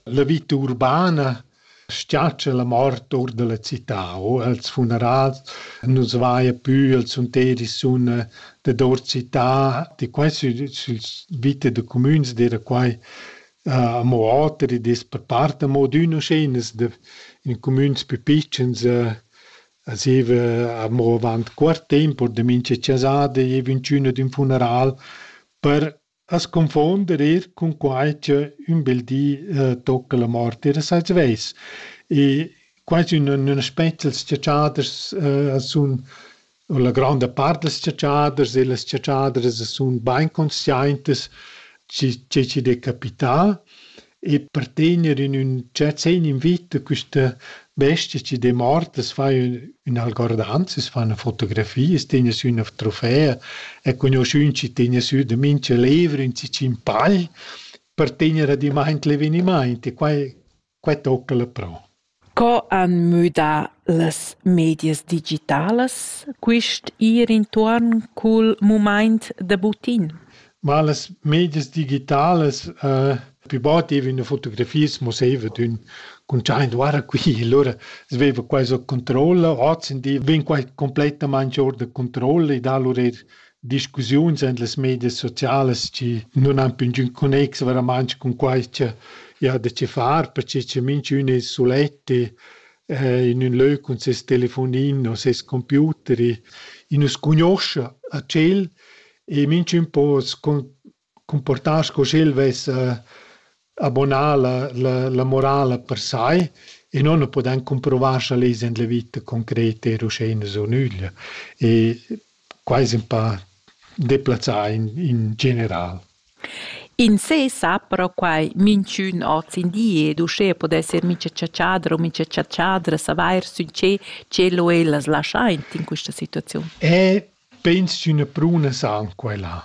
La vita urbana schiatscha la mort or dalla cità o els funerals nus vaia pü els sunteri sun dad our città di qua süs vite da cumüns d'eira quai amo oter ed es per part amo adüna scheinas da in cumüns pü pitschens zieva amo avant cuort temp or da mincha chasada gieva ünchün ad ün funeral per As confuonder eir cun quai cha ün bel di tocca la mort eir sai svess. E quai sun ün aspet dals chatschaders sun u la granda part dals chatschaders e las chatschadras sun bain consciaintas chi che chi'd è capità e per tener in ün giazin in vita quista bestia chi demort as fa üna algordanza, as fa üna fotografia, as tegna sü üna trofea e cugnuschün chi tegna sü da mincha levra ün tschicin pagl per tegner adimaint l'evenimaint e quai quai tocca la pro. Co han müdà las medias digitalas quist ir intuorn cul mumaint da butin? Ma las medias digitalas eh pü bod giavina fotografias musaivat ün cuntschaint guarda qui, lura svaiva quai so controlla, ozzendi vegn quai cumplettamaing our da controlla e da lur eir discussiuns en las medias socialas chi nun han più ingün connex veramente cun quai cha i ha da che far, perche che minchün es sulet in ün lö cun ses telefonin o ses computer e nu scugnuoscha a tschel e minchün po cumportar sco sch'el vess abonà la, la, la morala per sai e non ne podan comprovar scha les in la vita concreta er uschè in so nüglia. E quai es ün pa deplazzà in, in general. In sé sa però quai minchün hoz in di ed uschè podesser mincha chatschadra o mincha chatschadra savair sün che tschelo ellas laschaint in quista situaziun. E Peins ch'üna pruna san quai là.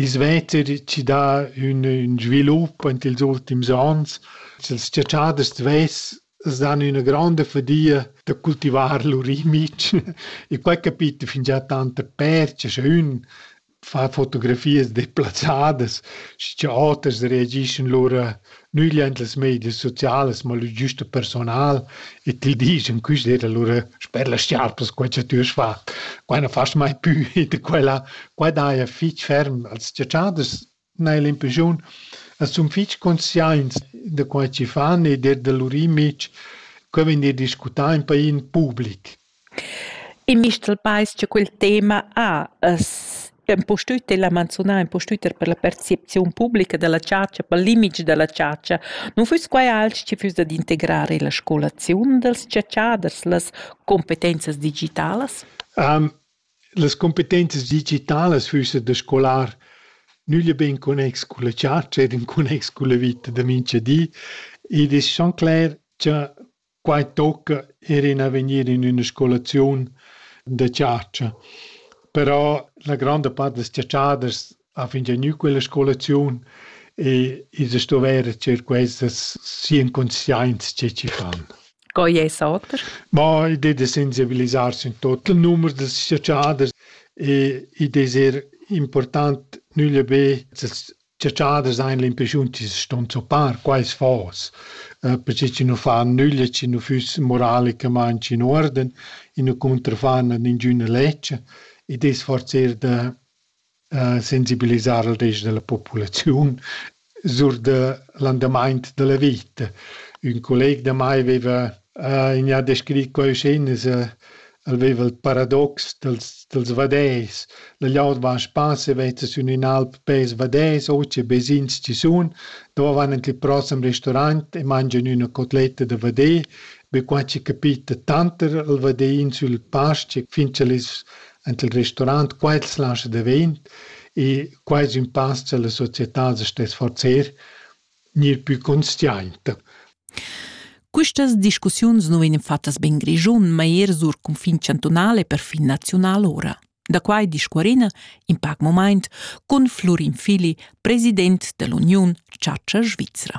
I svetter chi dà ün ün svilup aint ils ultims ons. Sels chatschaders d'vess s'dan üna gronda fadia da cultivar lur imic e quai capita fingià tanta percha scha ün fa fotografias deplazzadas schi cha oters reagischan lura nügliaint las medias socialas, ma lur güsta personal e ti disch in quist ed allura sper las schiarpas quai cha tü hast fat, quai non fast mai pü e da quella. Quai daja fich ferm als tschatschaders n'haja l'impreschiun. As sun fich consciaints da quai chi fan ed er da lur imich. Quai vegn discutà in pa in public. In mistral pais cha quel tema ha es impustüt el ha manzunà impustüt er per la percepziun publica da la chatscha, pel limit da la chatscha. Nu füss quai alch chi füss dad integrar illa scolaziun dals chatschaders, las cumpetenzas digitalas? Las cumpetenzas digitalas füssan da scolar nüglia be in connex culla chatscha ed in connex culla vita da mincha di. Id es schon cler cha Quai tocca er in avegnir in üna scolaziun da chatscha. Però la gronda part dals chatschaders ha fingià gnü quella scolaziun e ils a stuvair tger quesas sian consciaints che chi fan. Co es oter? Ma idea da sensibilisarsi in tot il numer dals chatschaders e id es eir important nüglia be als Ciaciaders ein l'impressiun chi ston zoppar quais fos, perche chi nu fan nüglia, chi nu füss moralicamaing in uorden, i nu cuntrafan ad ingüna lezcha. Id es forsa da sensibilisar al rest da la populaziun sur da l'andamaint da la vita. Ün colleg da mai veva in ha descrit coischinas el veva il paradox dels dels vaders. La gliaud va a spass e veta sün ün'alp pels vaders, o che vesins chi sun, dove van ant il prossem restaurant e mangian üna cotletta da vader. Be qua chi capita tanter il vaderin sül pastg fin ch'el es ant il restaurant, qua el slascha davent e qua es ün pass cha la società as sta sforzer ni il pü consciainta. Quistas discussiuns nu vegnan fattas be in Grischun, ma eir sur cunfin chantunal e perfin naziunal ora. Da quai discuorina in pac momaint cun Flurin Fili, president dell'Uniun Chatscha Svizra.